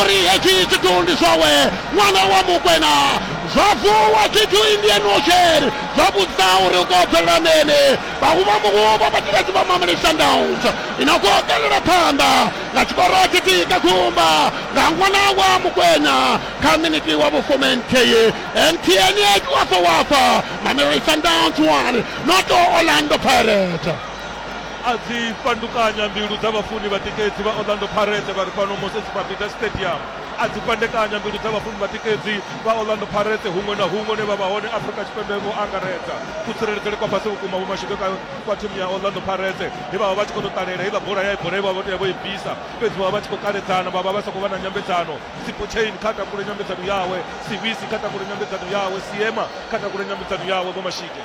Uri hetshi tshithu ndi zwawe, ṅwana wa Mokwena. Zwa vuwa tshithu Indian Ocean, zwa vhudzisa uri u khou bvelela mini. Vhahuvha muhuvha vha tshivhedzi vha Mamelodi Sundowns i no khou kalela phanḓa nga tshikoro tshithihi kha gumba nga ṅwana wa Mokwena kha miniti wa vhufumi nthihi. MTN 8 Wafa Wafa, Mamelodi Sundowns 1, Noto Orlando Pirates. a dzi fhandukanya mbilu dza vhafuni vhatikedzi vha Orlando Pirates vha re fhano Moses Mabhida Stadium, a dzi fhandekanya mbilu dza vhafuni vhatikedzi vha Orlando Pirates huṅwe na huṅwe hune vha vha hone Afrika Tshipembe vho angaredza. Kutsireledzele kwa fhasi vhukuma vho mashudze kha kwa thimu ya Orlando Pirates he vha vha vha tshi khou tou ṱalela heiḽa bola ya bola ye vha vha vho tea vho i bvisa, fhedzi vha vha vha tshi khou kaledzana vha vha vha sa khou vha na nyambedzano, Sipochain kha takule nyambedzano yawe, Sibisi kha takule nyambedzano yawe, Seema kha takule nyambedzano yawe, Vho Mashige.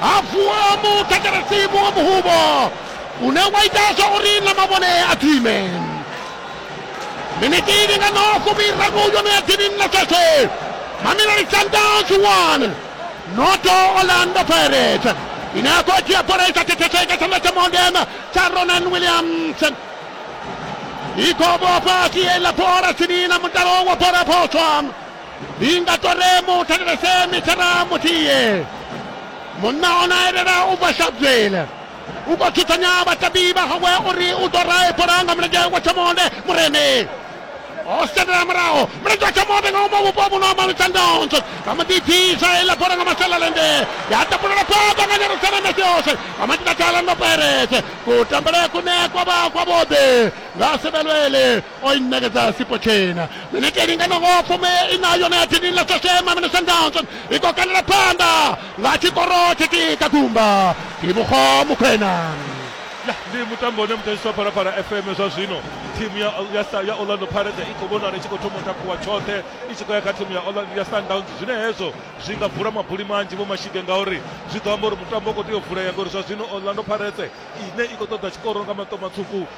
hafu a muthetshelesi muṅwe muhuvho une wa ita zwa uri na mavhone a dzime miniti ndi nga no fumiraru yone ya dzini na sese mamelodi sundowns 1 noto orlando pirates ine ya khou dzhia bola i sa thetheseka tshanḓa tsha monden tsha ronan williams i khou vhofha siela bola tsini na mutalo wa bola phoswa inga toremo u thetshelese mithara muthihi munna o na elela u bva shabzwele u khou thuthanya vhatabi vha hawe uri u ḓo rae bola nga mulenzhe wa tshamonde mureme o sendela muraho mulenzhe wa tshamonde nga uma vhupo vhuno amba mitsandonso vha mu ḓibvisa iḽa bola nga masalalende ya tapulela phaḓa nga nyerusaleme siose vha matita thala ndo perese kutambele kune kwa vha kwa vhoḓe nga sebelwele o i ṋekedza sipo tshena minete i linganaho fumi ina yone ya dini ḽa sashema mine sandownson i khou kandela phanḓa nga tshikoro tshithihi kha gumba ivhukho mukhwena ya ndi mutambo une mutashiswa phalaphala fm zwa zwino thimu ya, ya, ya orlando pirates i khou vhonala i tshi khou thoma u takuwa tshoṱhe i tshi khou ya kha thimu ya, ya sundowns zwine hezwo zwi nga bvula mabuli manzhi vho mashige ngauri zwi ḓo amba uri mutambo u khou tea u vulea ngauri zwa zwino orlando pirates ine i khou ṱoḓa tshikoro nga maṱo matswuku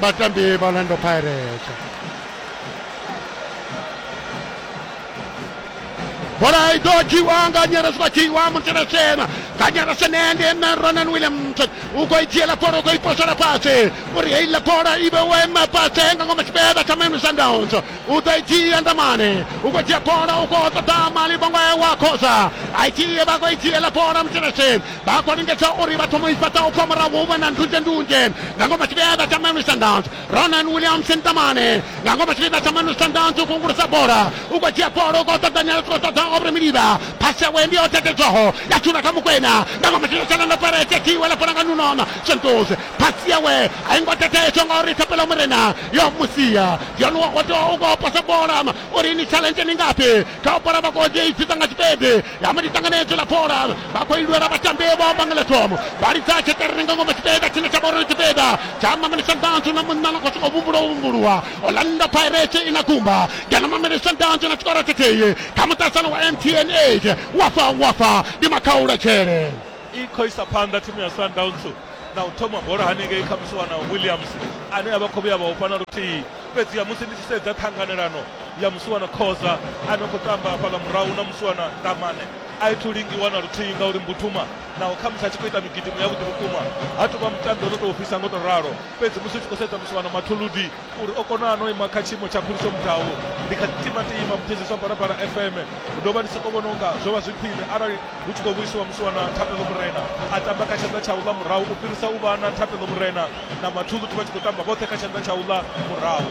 vhatambi vha orlando pirates bola i ḓo dzhiwa nga nyelesi vha dzhiwa muteleshema nga nyelesi nende na ronan williamson u khou i dzhiela bola u khou i posela fhasi uri heiḽa bola i vhe wema fhasi nga ngoma tshibeda tsha maine sundowns u ḓo i dzhia ndamane u khou dzhia bola u khou ṱoḓa mali vhongo wa khosa a i dzhie vha khou i dzhiela bola muteleshema Vha khou lingedza uri vha thome u i fhaṱa u bva murahu vha na ndunzhendunzhe nga ngomu ha tshipiḓa tsha Mamelodi Sundowns. Ronan Williamson Tamane nga ngomu ha tshipiḓa tsha Mamelodi Sundowns u khou ungulusa bola, u khou dzhia bola u khou ṱaṱanyela, u tshi khou ṱoḓa Aubrey Miliva. Phasi yawe ndi yo tekedzaho ya dzula kha Mokwena nga ngomu ha tshipiḓa tsha Orlando Pirates. Thi wela bola nga Nuno Santos, phasi yawe a i ngo teteedzwa ngauri Thapelo Morena yo mu sia. Dion Wakoto u khou posa bola uri ni tshaḽenzhe ndi ngafhi kha u bola vha khou ḓi i dzudza nga tshipedi. ya madi tanganedzwe la bola vha khou ilwela vhatambi vho amba nga ḽekomo vha lidza tsheṱereni nga ngomu tshipiḓa tshine tsha vha uri tshipiḓa tsha mameli sandanzu na munna na khou sokou vhumbulwa vhumbulwa orlando pirate i na kumba ngeno mameli sandanzu na tshikoro tshithihi kha muṱasano wa mtn 8 wafa wafa ndi makhaulatshele i khou isa phanḓa thimu ya sundowns na u thoma bola hanengei kha musi wana Williams ane a vha khou vhuya vha ofha na luthihi fhedziha musi ndi tshi sedza ṱhanganelano ya musi wana Khoza a no khou tamba hafhaḽa murahu na musi wana Ndamane a i thu lingiwa na luthihi ngauri Mbuthuma naho khamusi a tshi khou ita migidimo ya vhuḓi vhukuma ha tou vha mutambi o no tou ofhisa ngo tou ralo fhedzi musi u tshi khou sedza musi wana Mathuludi uri o kona no ima kha tshiimo tsha phuliso mudau ndi kha timatima muthetshiswa barabara fm ndo vha ndi soko vhona unga zwo vha zwi khwine arali hu tshi khou vhuisiwa musi wana thapelo murena a tamba kha tshanḓa tsha uḽa murahu u fhirisa u vha na thapelo murena na mathuṱhuthi vha tshi khou tamba vhoṱhe kha tshanḓa tsha uḽa murahu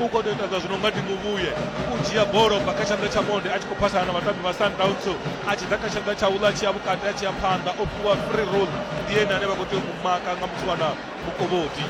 u khou tou ita zwa zwino nga tinguvhuye u dzhia bola bva kha tshanḓa tsha monde a tshi khou phasana na vhatambi vha sundowns a tshi ḓa kha tshanḓa tsha uḽa a tshi ya vhukati a tshi ya phanḓa o fhiwa free roll ndi ene ane vha khou tea u mu maka nga muthu wana mukovhodi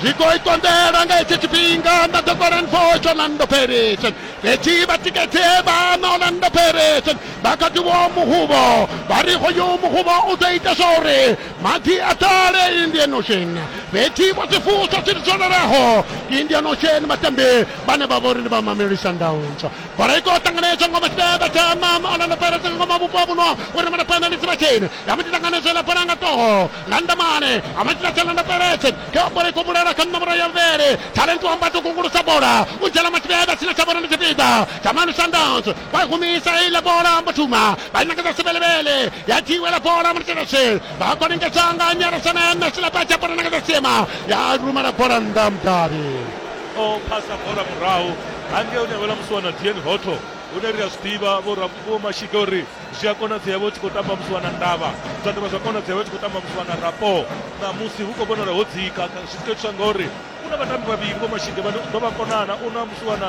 zwi khou ikonḓela nga hetsho tshifhinga nda ḓo kola nfosh orlando paris fhedzi vhatikedze vhana orlando paris vha kha ḓivho muhuvho vha ri hoyo muhuvho u ḓo ita zwa uri Madzi atale Indian Ocean vetiwa tifusa tititsoneraho Indian Ocean matambi bane vha vhori ndi vha Mamelodi Sundowns bola i khou ṱanganedzwa ngoma tshibebe tsha mama Orlando Pirates nga ngoma vhupo ha vhuno uri mana penalty vha tsheni ya mbo ḓi ṱanganedzela bola nga toho Landamane a mbo ḓi ḓa Orlando Pirates kha bola i khou vhulela kha ṋomboro ya vhuvhili Talent Wambati u kungulusa bola u dzhena matshibebe tshine tsha vhona ndi tshipiḓa tsha Mamelodi Sundowns vha humisa iḽa bola mbo thuma vha ṋekedza sibelebele ya dziwela bola mutshedashe vha khou lingedza nga nyarasana na silapatsa bola ṋekedza siema ya rumela bola nnḓa mudavhi o phasa bola murahu hangei une avhela musi wana dn hoto hune ri a zwi ḓivha vho mashika uri zwi a konadzea vho tshi khou tamba musi wana ndavha zwa dovha zwa konadzea vho tshi khou tamba musi wana rapo ṋamusi hu khou vhonala ho dzika zwi tshi khou itiswa ngauri u na vhatambi vhavhili vho mashika vhane u ḓo vha konana u na musi wana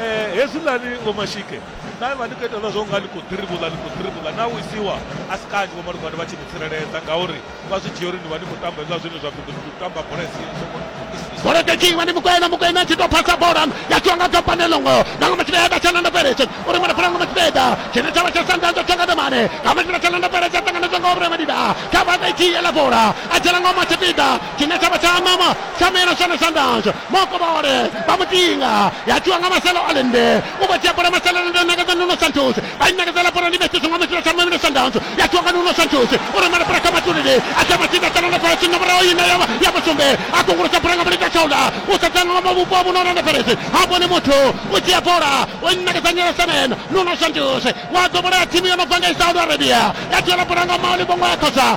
Eh, hezwiḽani vho mashike na vha ni khou itelwa zwo nga ni khou ḓirivhula ni khou ḓirivhula na wisiwa a si kanzhi vho malugwani vha tshi ni tsireledza ngauri vha zwi dzhia uri ni vha ni khou tamba hezwiḽa zwine zwa pfhi ndi tamba bola isi songo bola takiwa ni mukwena mukwena tshi tou phasa bola ya tshiwa nga gapane longo na nga matshile eda tshana ndo pereche uri mwana fana nga matshile eda tshine tshavha tsha sanda ndo tshenga domane nga matshile tshana ndo pereche tanganedzwa nga obure madida kha vha takiwa la bola a tshela nga matshipida tshine tsha vha tsha ṋama tsha mela tshone sandans mokobole vha mutinga ya tshiwa nga maselo alende u vha dzhia bola maselo alende nakadza nuno santos vha i nakadzela bola ndi methuse nga mutshila tsha mela sandans ya tshiwa nga nuno santos u rumela bola kha matulele a tsha matsinda tsha langa fhala tshinga muraho ine ya ya musumbe a kungulusa bola nga mulita tshaula u sedzana nga mavhupo a vhunona na peresi ha vhone muthu u dzhia bola u nakadza nyela semen nuno santos wa ḓo bola ya thimu yo no bva nga i saudi arabia ya dzhiela bola nga maoli vhongo ya khosa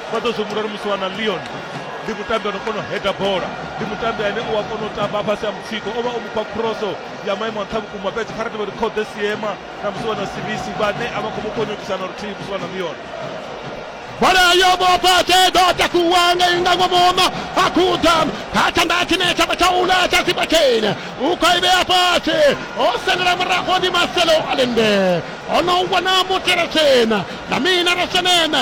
vha ḓo zwi humbula uri musi wana leon ndi mutambi ano kona u heda bola ndi mutambi ane u a kona u tamba fhasi ha mutsiko o vha o mufha khroso ya maimo a nṱha vhukuma fhedzi kha ri tevhe ri khode siema na musi wana sibisi vhane a vha khou mu konyokisana luthihi musi wana leon bola yo vhofha tshe ḓo takuwa ngei nga ngomoma a khuda kha tshanḓa tshine tsha vha tsha ula tsha sipa tshene u khou i vhea fhasi o sendela murago ndi maselo alende o no wana mutela tshena na mina ra seneme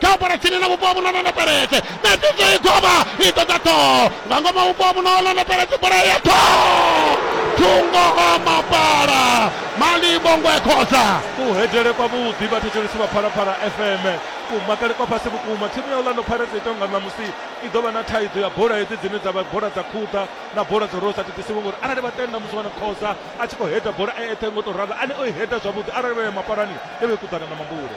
kha u bvela tsini na vhupo vhu no ṋoṋepeledze na ṱidzo i govha i ḓo dza ṱhoho nga ngomu ha vhupo vhu no ṋoṋepeledze bola ya ṱhoho thungo o mapala malivhongo e khoza kuhedele kwa vhuḓi vhathetshelesi vha phalaphala fm kumakale kwa fhasi vhukuma thimu ya orlando pirates ita nga ṋamusi i ḓo vha na thaidzo ya bola hedzi dzine dza vha bola dza khuḓa na bola dzo rosa thithisiwe ngori arali vha tenda musi vha na khoza a tshi khou heda bola e eṱhe ngo tou ralo ane o i heda zwavhuḓi arali vha ya mapalani e vha i kuḓana na mambule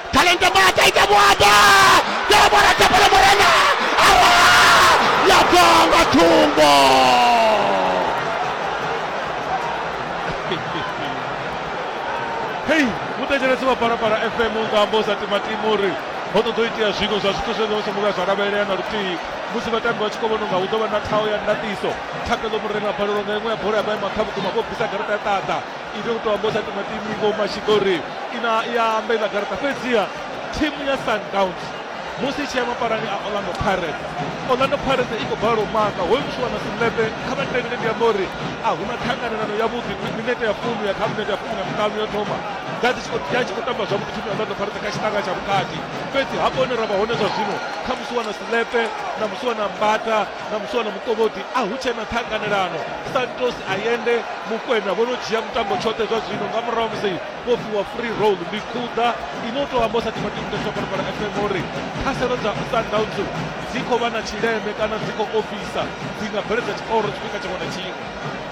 Kalenta Mata ita mwamba Debora Tapala Morena awa yagonga tumbo hei mutecheresi wa parapara fm nga ambosa timatimu uri ho ṱoḓo itea zwiṅwe zwa zwithu zwe zwa songo vhuya zwa lavhelea na luthihi musi vhatambi vha tshi khou vhona unga hu ḓo vha na thaho ya ndaṱiso thakeḽo murena balelwa nga iṅwe ya bola ya maima kha vhukuma vho bvisa garaṱa ya ṱaḓa i tea u tou amba u sa timatimi vho mashika uri ina i a amba iḽa garaṱa fhedziha thimu ya sundowns musi i tshi ya mapalani a orlando pirates orlando pirates i khou bala u maka hoyu muthu wana sinepe kha vha tevhele ndi amba uri a hu na ṱhanganelano yavhuḓi minete ya fumi ya kha minete ya fumi na miṱanu yo thoma dza dzi ya tshi khou tamba zwavhuḓi thimu ya orlando pirates kha tshiṱanga tsha vhukati fhedzi hafho hune ra vha hone zwa zwino kha musi wana sinepe na musi wana mbata na muswa na mukovhodi a hu tshena ṱhanganelano santos ayende mukwena vho no dzhia mutambo tshoṱhe zwa zwino nga murahu musi vho fhiwa free roll ndi khuḓa ino tou amba sa timatimudaswa phalaphala fm uri khaselo dza sundowns dzi khou vha na tshileme kana dzi khou ofisa dzi nga bveledza tshikoro tshifhinga tshiṅwe na tshiṅwe